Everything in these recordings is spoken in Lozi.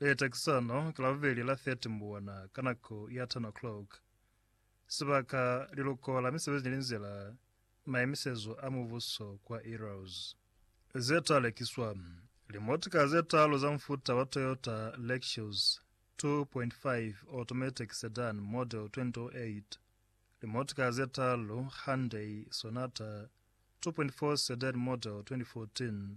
Beta kisano ka Labobeli la 30 Mbuwana ka nako ya 10 o'clock. Sibaka, Liluko la Misebezi ni Linzila, Maimisezo a Mubuso kwa Earl's. Ze ta lekiswa, Limotika ze talu za mufuta wa Toyota Lexus 2.5 Automatic Sedan Model 2008, limotika ze talu Hyundai Sonata 2.4 Sedan Model 2014,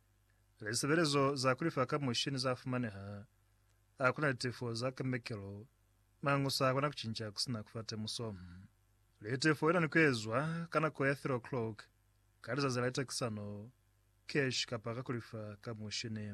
Lisebelezo za kulifa ka mushini za fumaneha. A kuna litefo za kemekelo, mañu sa kona kucinca kusina kufa temuso. Litefo ina ni kuezwa ka nako ya 3 o'clock ka lizazi la litekisano, cash kapa ka kulifa ka mushini.